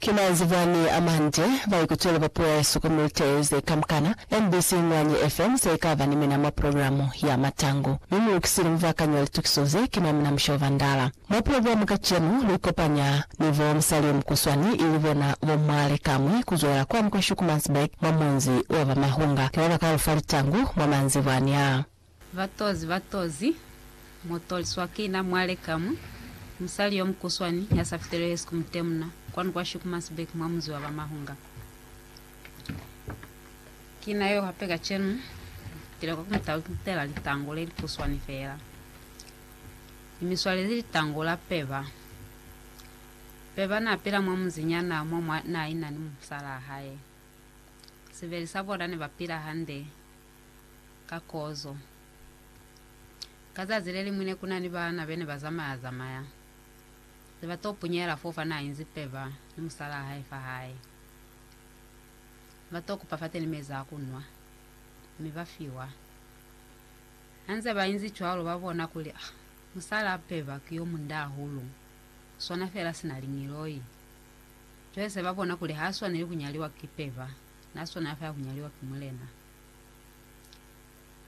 Ki manzwi bani a mande baikutweli ba puo ya hesu ku milte ze kamukana? MBC Inguanyi FM se ikaba ni mina mwa programu ya Matangu, mi mu lukisile mubakanyi wa litukiso ze, ki mwa mina Mushoba Ndala. Mwa programu kacenu, lu ikopanya ni bo musali yo mukuswani, ili bona bo Mmwale Kamwi, ku zwela kwani kwa Schoekemannsburg mwa munzi wa ba Mahunga. Ki ba ba ka lu fa litangu mwa manzibwani aa. Batozi, batozi, mu toliswa ki na mwale ka mwi, musali yo mukuswani ya sa fiteli hesi ku mutemuna, kwanu kwa Shikumasbek mwa munzi wa ba Mahunga. Ki na yo hape kacenu, tile kwa ku mu talutela litango le likuswani fela. Ni mi swalezi litango la Peba. Peba na pila mwa munzi nyana mo mwa na ina ni musalaa hae. Sibeli sa bona ne ba pila hande. ka kozo. Ka zazi le liñwi ne ku na ni baana be ne ba zamaya-zamaya, ze ba t'o punyela f'o fa n'a inzi peba ni musalaa hae fa hae. Ba t'o kupa fateni mezi a ku nwa, mi ba fiwa. Ha nze ba inzi cwalo, ba bona kuli, Ah, musalaa peba ki yo munda hahulu, u swana fela sina liñiloi. Cwale se ba bona kuli h'a swaneli ku nyaliwa ki peba. Na swana afa ya ku nyaliwa ki Mulena.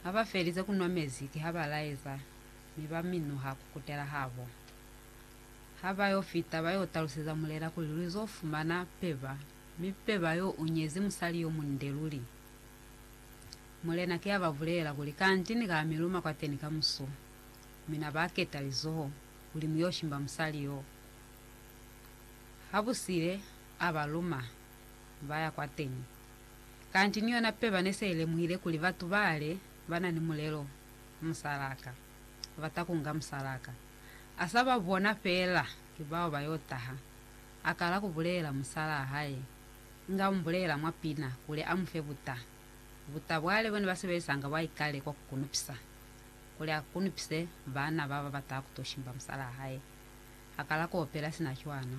Ha ba felize ku nwa mezi, kiha ba laeza, mi ba minuha ku kutela habo. Ha ba yo fita, ba yo taluseza Mulena kuli lu zo fumana peba, mi peba yo u nyezi musali yo munde luli. Mulena ki a ba bulela kuli, Kanti ni ka mi luma kwateni kamusu. Mi na ba keta lizoho kuli mu yo shimba musali yo. Ha bu sile, a ba luma. ba ya kwateñi. Kanti ni yona peba ne se i lemuhile kuli batu bale ba na ni mulelo, musalaka, ba ta kunga musalaka. A sa ba bona feela ki bao ba yo taha. A kala ku bulela musalaa hae, inga u mu bulela mwa pina kuli a mu fe buta, buta bwa le bone ba sebelisanga bwa ikale kwa ku kunupisa, kuli a kunupise baana ba ba bata ku to shimba musalaa hae. A kala ku opela sina cwana.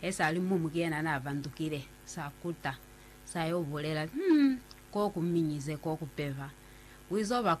He sa li mumu ki yena n'a vandukile, sa kuta, sa y'o bulela, Hum, k'o ku minyize, k'o ku peva. U iz'o ba